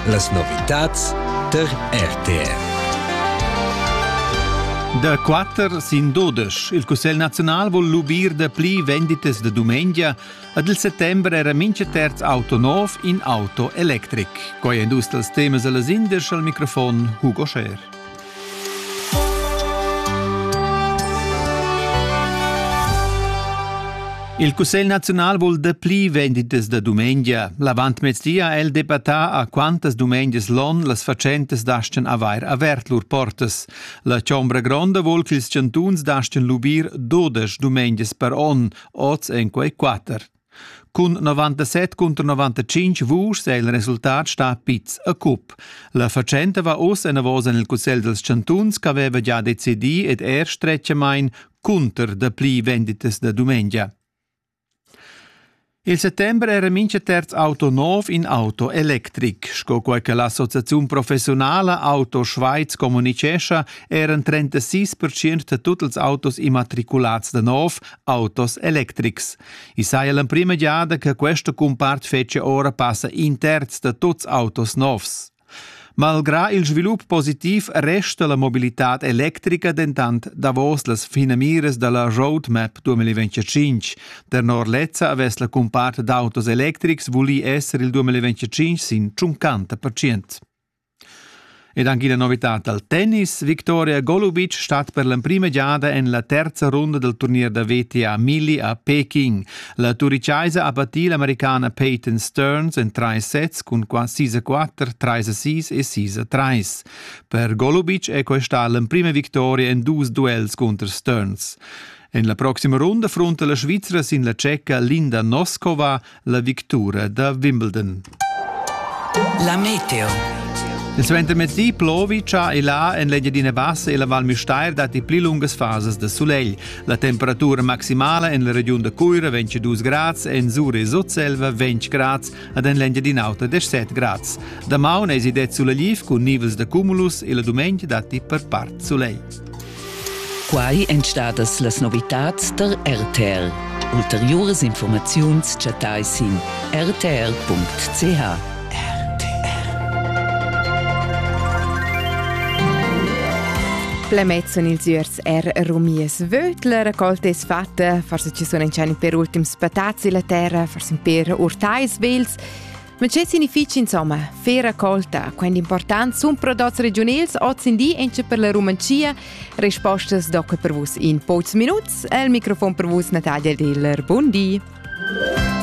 Las novitads tar RTR. Da quatter sin dudesch. Il Cussegl nazional vul lubir da pli venditas da dumengia. Ad il settembre era mincha terz auto nov in auto electric. Quai è dus dals temas a las indisch al microfon Hugo Scher. Il Cussegl naziunal vul dapli venditas da dumengia. L'avantmezdi ha el debattà a quantas dumengias l'on las fatschentas dastan avair avert lur portas. La Chombra Gronda vul ch'ils chantuns dastan lubir 12 dumengias per on, oz en quei quatter. Cun 97 contro 95 vuschs è il resultat stà piz a cup. La fatschenta va oz enavos en il Cussegl dals chantuns ch'aveva già decidì ed er stretgamain cunter dapli venditas da dumengia. Il settember era mincha terz auto nov in auto electric. Sco quai che l'associaziun professionala Auto Schweiz communichescha, eran 36% da tut ils autos immatriculats da nov autos electrics. I saja l'emprima giada che questa cumpart fetschia ora passa in terz da tuts autos novs. Malgrà il svilup positiv resta la mobilitad electrica dentant davos las finamiras da la Roadmap 2025. Tenor lezza avess la cumpart d'autos electrics vulì esser il 2025 sin 50%. Ed anche la novità dal tennis. Victoria Golubic stat per l'emprima giada en la terza runda del turnier da VTA Milli a Peking. La turicaisa ha battì l'americana Peyton Stearns en trais sets cun 6-4, 3-6 e 6-3. Per Golubic è questa l'emprima vittoria en dus duels cunter Stearns. En la proxima runda frunta la Svizra sin la tscheca Linda Noskova la victura da Wimbledon. La meteo. Il suentermezdi plovi cha e là en l'Engiadina Bassa e la Val Müstair datti pli lungas fasas da sulegl. La temperatura maximala en la regiun da Cuira ventg 2 grads, en Zure e Sutselva 20 grads ed en l'Engiadina Auta 17 grads. Damaun es idet sulegliv cun nivels da cumulus e la dumengia datti per part sulegl. Quai èn stadas las novitads tar RTL. Ulteriuras informaziuns chattai sin rtl.ch. Plemezzan ils üers er rumiers vötler, col tes fatta, forse ci sun encani per ultims patazzi la terra, forse per urtais vels. Ma che significha insomma fer raccolta quant important sun prodots regiunals oz in di encha per la Rumanzia? Respostas docca per vus in pochs minuts. El microfon per vus Natalia Diller. Bundi.